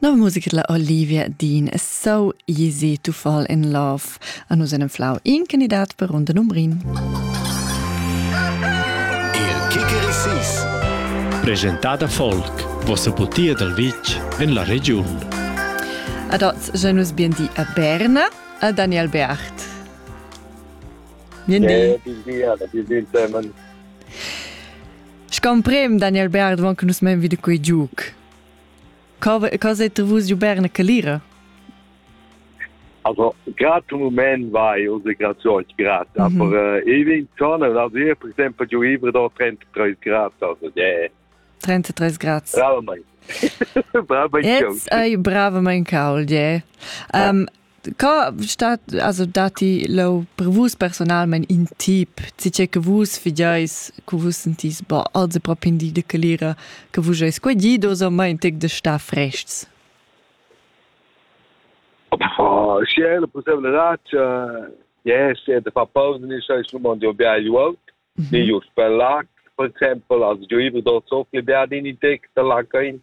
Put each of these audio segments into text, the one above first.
Nova musica la Olivia Dean So Easy to Fall in Love an us en Flau in candidat per runda numbrin. Il Kikerisis Presentada Folk vossa putia dal vitg en la regiun. Ad oz genus bien di a Berna a Daniel Beacht. Bien di. Bien di, bien di, Simon. Scamprem Daniel Berg davon che nus men wieder quei giuc. Cosa è vus giu berne che lira? Also grato moment vai unsere Grazione grad, mhm. aber äh, ich bin schon also hier per esempio giu ivre da 33 grad, also yeah. 33 grad. Bravo mein. bravo mein Jetzt hai bravo mein Kaul, yeah. Um, Co stat, also dati lo per vus personalment in tip, tge che vus fideis, che vus sentis, boh, also proprio di de calira, che vus eis qua gidos o mai tic de sta frests? Oh, si è la possibile raccia, yes, è de far pausa nei scheiß Nummern, die beide wollt, mhm. nei just per lag, per exempel, also die über dort so viel werden in die Texte lacken,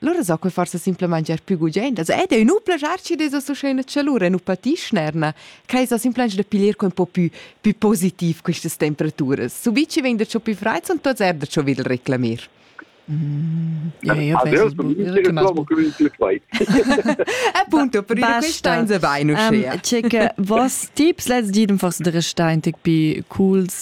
Lura so quei forsa simplamain giar più gugent. Also, ed ei nu plagiar chi desa so scena chalura e nu patischnerna. Quai sa simplamain da piglier con po più, più positiv questas temperaturas. Subici vegn da ciò più freid, son tots er da ciò videl reclamir. Mm, ja, io penso che trovo che il flight. Appunto, per dire questo in se vai, non um, C'è che vos tips, let's dir, forse der Stein, più cools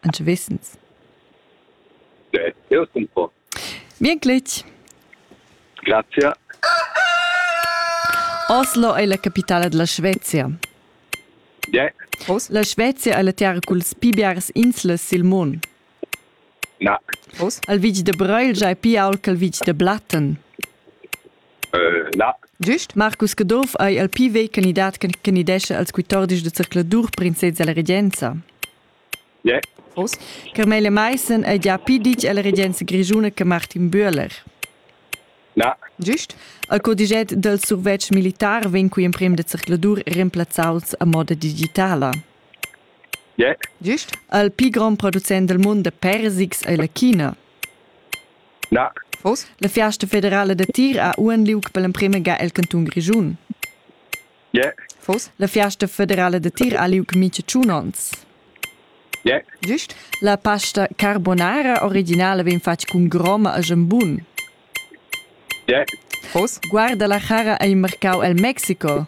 Anche wissens. Bien glitch. Grazie. Oslo è la capitale della Svezia. Yeah. La Svezia è la terra culs pi biares inslas sil mund. Na. Al vitg de Bröilge è pi ault che il vitg de Blatten. Uh, na. Giust? Marcus Caduff è il pi vecchio candidat che candidesce als 14 de circoladur princesa alla regenza. Yeah. Carmele Meissen è già pi ditg alla regenza grischuna che Martin Bühler. Na. Giust? Il codiget del survetsch militar vegn cui emprem da circladur remplazzaus a moda digitala. Yeah. Giust? Il pli grond producent del mund de persics è la China. Na. La fiasta federale da tir ha uan liug per l'emprema ga el canton grischun. Yeah. Foss la fiasta federala da tir ha liug mica tschun onns? Yeah. Giust. La pasta carbonara originala vegn fatg cun groma e schembun. Yeah. Foss guarda la chara ei marcau el Mexico?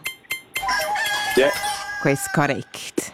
Yeah. Quei correct.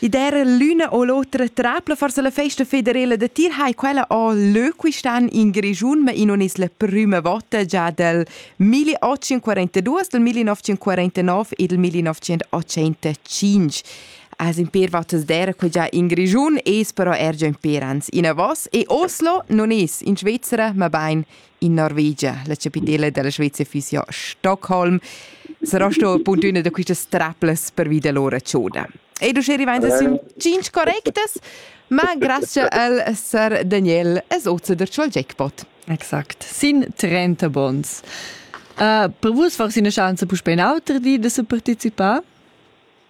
I der l'una o l'otra trapla forse la festa federela da tir hai quella o l'öquistan in Grigiun ma in on es la prüma vota già dal 1842, dal 1949 e dal 1985. As in per votas der che già in Grigiun es però er già in per ans in a Voss e Oslo non es in Svizzera ma bain in Norvegia, la chapitala della Svezia fisio Stockholm, sarà sto appunto una da queste straplas per via dell'ora ciona. E du arrivando su cinque correctes, ma grazie al Sir Daniel es oza der al jackpot. Exakt, sin 30 bons. Uh, per vus war es eine Chance, puspei in auter di de se partecipar?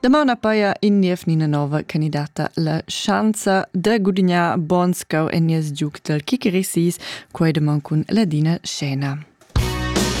Damau na paia in niev ni na nova candidata la schanza da gudignar Bonscau en nies giug dal Kikerisis, quai da man cun Ladina Scena.